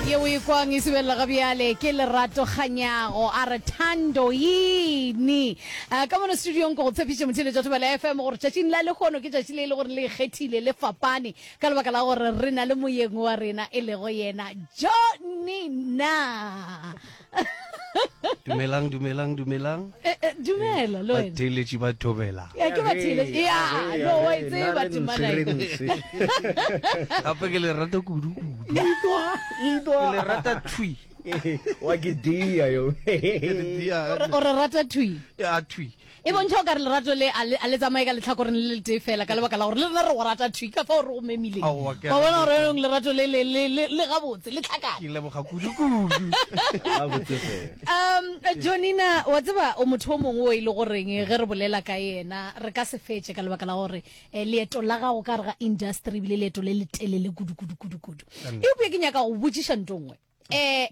Ye o e kwang e subelela ga bjale ke Lerato Kganyago, a re Thando yini? Ka mono studiong ke go tshepiše motheeletša Thobela FM gore tšatšing la lehono ke tšatši le e le gore le ikgethile, le fapane ka lebaka la gore re na le moyeng wa rena e lego yena Johnny Na. dumelang dumelang dumelang eh, eh, dumela lo wena batheeletši ba thobela ya ke batheeletši ya no wa e tseba temana gape ke le rata kudu kudu ke le rata thui wa ke dia yo o re rata thui ya thui E bontšha o ka re lerato le a le, a le tsamaye ka letlhakoreng le le tee fela, ka lebaka la gore le rena re go rata thwi ka fao re go memileng. Aowa, ke a Wa bona gore leboga. yaanong lerato le le, le, le, le gabotse, le tlhakane. Ke leboga kudu-kudu. Gabotse fela. Um, Jonina, wa tseba o motho o mongwe o e le goreng ge re bolela ka yena re ka se fetše ka lebaka la gore eh, leeto la gago ka re ga industry ebile leeto le le telele kudu kudu kudu kudu. Kannete. Eupša ke nyaka go botšiša nto nngwe. eh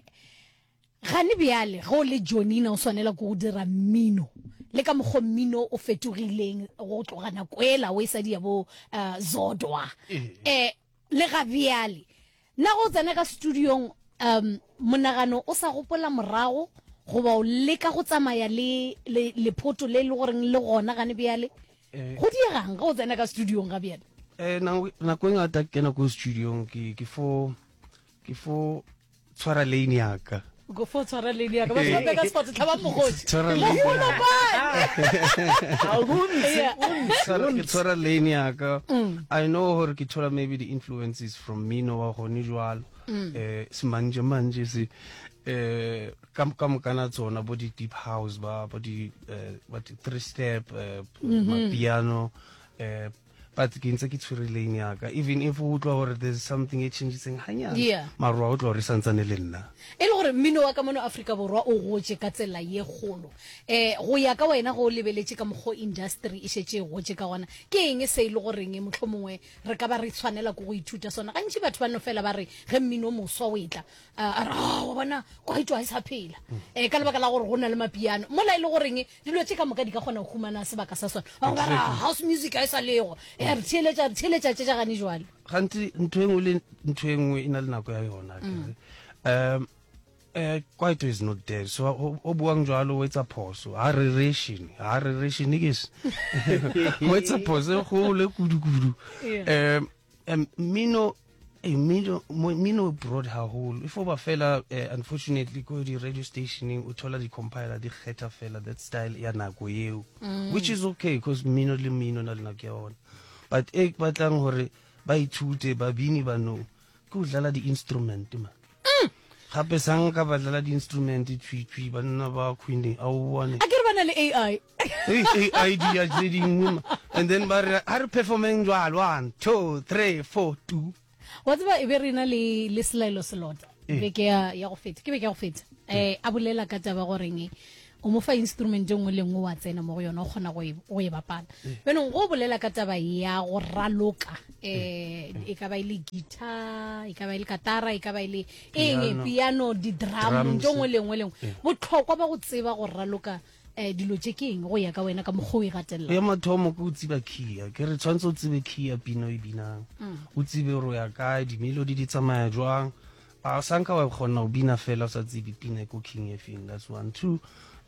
gane bjale go le jonina o swanela ke go dira mmino le ka mokgo mmino o fetogileng go tloga nako ela o e sadi ya bo uh, zodwa eh le ga bjale na go tsena ka studiong um monagano o sa gopola morago goba o leka go tsamaya le lephoto le le goreng le gona gane bjale eh. go diegang ga o tsena ka studiong ga bjale um nako e ngata ke kena ko studiong ke fo ke fo tshwara lane yaka fo tshwara lane yaka batho ba beka sport tlhaba mogosi tshwara lane tshwara lane yaka mm. i know gore ke thola maybe the influences from me no wa gone jwalo mm. eh semanje manje se eh ka ka mokana tsona bo di deep house ba bo di eh, what three step eh, mm-hmm. piano eh but ke ntse ke tshwere lane ya ka even if o utlwa gore there's something e changitseng ganyana yeah. maro a o tlo gore e santsane le nna e le gore mmino wa ka mono aforika borwa o gotse ka tsela ye kgolo um go ya ka wena go o lebeletse ka mokgwa industry e šetse e gotse ka gona ke eng se e le goreng motlho mongwe re ka ba re tshwanela ko go ithuta sona gantši batho ba no fela ba re ge mmino moswa o etla a re wa bona kwaito ga e sa phela um ka lebaka la gore go na le mapiano mola e le goreng Dilo tše ka moka di ka kgona go humana sebaka sa sona. Ba go ba ra Exactly. house music ga e sa lego. Ya re theeletša, re theeletša tše tša gane jwale. gantsi ntho engwe le ntho engwe e na le nako ya yona akere. um eh, kwaito is not dead so o o buang jalo o etsa phoso ha rerešene ha rerešene ke se o etsa phoso e golo e kudukudu Yeah. um um mmino eh, mmino mmino broad haholo e foba fela eh, unfortunately ko di-radio stationeng o thola di-compiler di kgetha fela that style ya nako eo mm. which is okay because mmino le mmino na le nako ya ona but e batlang gore ba ithute babini banong ke go dlala di-instrument ma mm. gape sang ka ba dlala di-instrument tshwitshwi banna ba queene a o bone a ke re ba na le ai ai di ya tse dingwe and then ba re a re performeng jalo one two three four two wa tseba e be re na le le selaelo selota eh. beke ya go feta ke beke ya go feta um a bolela ka taba goreng o mo fa instrument e nngwe le nngwe wa tsena mo go yone o kgona go e, e bapala bjanong go bolela ka taba ya go raloka um e ka ba e le guitar e ka ba e le katara e ka ba e le eng piano di-drum nto nngwe le nngwe le nngwe botlhokwa ba go tseba go raloka um dilo tse ke eng go ya ka wena ka mokgwa o e gatelela ya mathomo ke o tsiba kia ke re tshwanetse o tsebe kia pino e binang mm. o tsibe gore o ya kae dimelodi di tsamaya jwang A o sa nka wa kgona go bina fela o sa tsebe pina e ko king e feng that's one two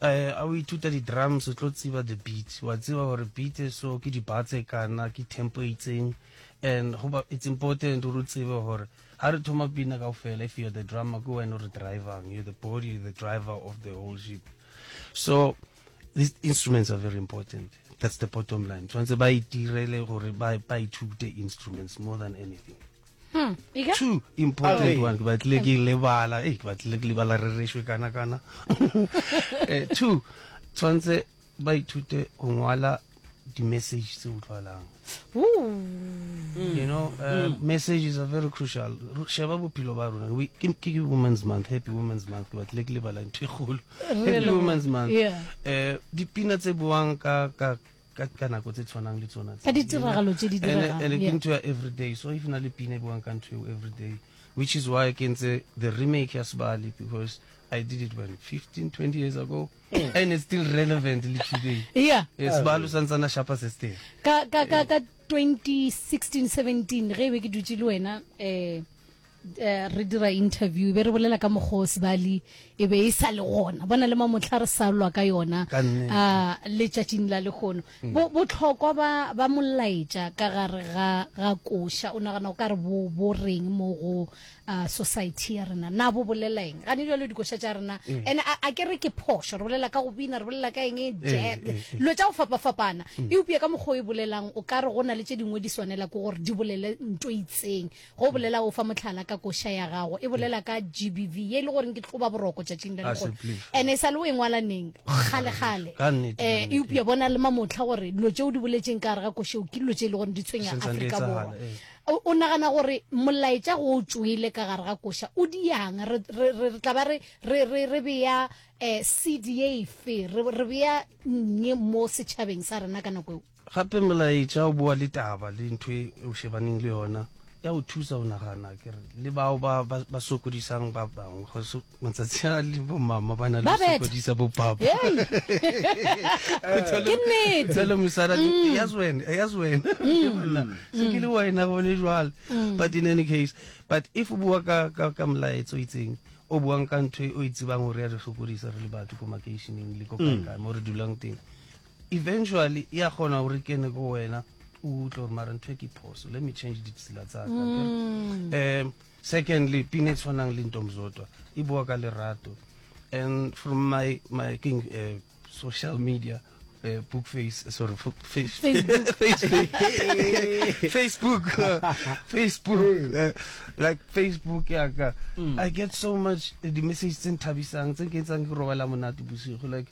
um a o ithuta di-drums o tlo tseba the beat wa tseba gore beat e so ke di-bar tse kana ke tempo e itseng and goba it's important gore o tsebe gore ga re thoma pina kao fela if you're the drummer ke wena o re drivang you're the body you're the driver of the whole ship so these instruments are very important that's the bottom line tshwanetse ba itirele gore ba ba ithute instruments more than anything Hmm, two important one ke batlile ke lebala e ke batlile ke lebala re rešwe kana kana eh, two tshwanetse ba ithute go ngwala di-message tse utlwalang you know uh, mm. messages are very crucial sheba bophelo ba rona ke women's month happy women's month ke batlile ke lebala ntho e golo happy women's month eh, dipina tse boang ka ka ka nako tse tshwanang le tsona tse ditiragalo tse di diregang and ke ntho ya every day so if na le pina e buang ka ntho eo every day which is why ke ntse the remake ya sebali because I did it when 15 20 years ago and it's still relevant le today yeah it's balo sa ntsana shapa se ste ka ka ka 2016 17 ge be ke dutse le wena eh Eh, re dira interview be re bolela ka mokgwa sebali e be e sa le gona bona le mamotlha re salwa ka yona ah, letšatšing la lekgono mm. botlhokwa ba molaetša ka gare ga koša o nagana o ka re bo reng mo go ah, society ya rena na bo bolelaeng gane jalo dikoša tša rena mm. and a ke re ke phošo re bolela ka go bina re bolela ka eng mm, dilo tša go fapafapana eupša ka mokgwa o e bolelang o ka re go na le tše dingwe di swanela ke gore di bolele nto itseng Go bolela o fa motlhala ka koša ya gago. E bolela ka GBV ye e le goreng ke tloba boroko tšatšing la legono. Ene e sa le o e ngwala neng? Kgale-kgale. Eh, eupša bona le mamotlha gore dilo tšeo di boletseng ka gare ga košeo ke dilo tše e le gore di tshwenya Afrika Borwa. O nagana gore molaetša go o tšwele ka gare ga koša o diang? Re tla ba re beya um seed ye efe? Re beya nnye mo setšhabeng sa rena ka nako eo? Gape molaetša o boa le taba le ntho e o šebaneng le yona, ya o thusa go nagana ke re, le bao ba ba, ba sokodisang ba bangwe. Go se, matsatsi a le bomama ba na le Ba go beta. sokodisa bopapa. Hei. Ke Thole- nnete. Thole mosala le, e ya zwena, e ya zwena. Ke gona. Se ke le wena gone jwale. But in any case, but if o bua ka, ka, ka molaetsa o itseng, o buang ka ntho e o e tsebang gore ya re sokodisa re le batho ko makeišeneng le ko kae kae mo re dulang teng. Eventually ya kgona gore kene go wena o utlwe gore mara ntho e ke phoso let me change ditsela tsaka um mm. secondly pina e tshwanang le ntomzodwa e bua ka lerato and from my my king uh, social media uh, book face uh, sorry face, facebook facebook uh, facebook uh, like facebook yaka mm. i get so much uh, di message tse nthabisang tse ke etsang ke robala monate bosigo like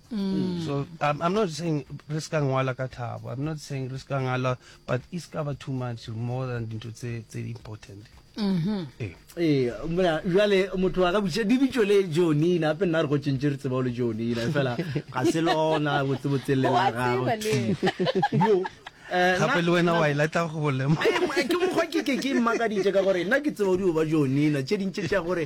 Mm. So I'm, I'm not saying re se ka ngwala ka thabo. I'm not saying re se ka ngala but e se ka ba too much more than dintho tse tse important. Mhm. Eh. ee mna jale motho a ka botšiša di bitšo le jonina gape nna re go tšentše re tseba o le jonina fela ga se lona botsebotseng le la gago Wa tseba Yo, eh, Gape nna- le wena wa e latla go bolema. Eh, mo- ke mokgwa ke ke ke mmakaditše ka gore nna ke tseba o di o ba jonina tše dintše tša gore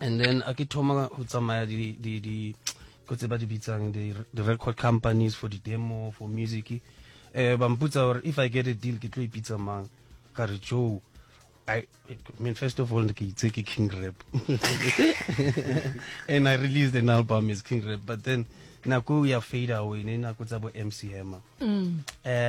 and then a ke thoma go tsamaya di di di ko tse ba di bitsang di record companies for the demo for music eh ba mputsa gore if i get a deal ke tlo ipitsa mang ka re joe I, I mean, first of all, it's a King Rap. and I released an album as King Rap, but then Naku ya fade away, Naku Zabo MC Hammer. Mm. Uh,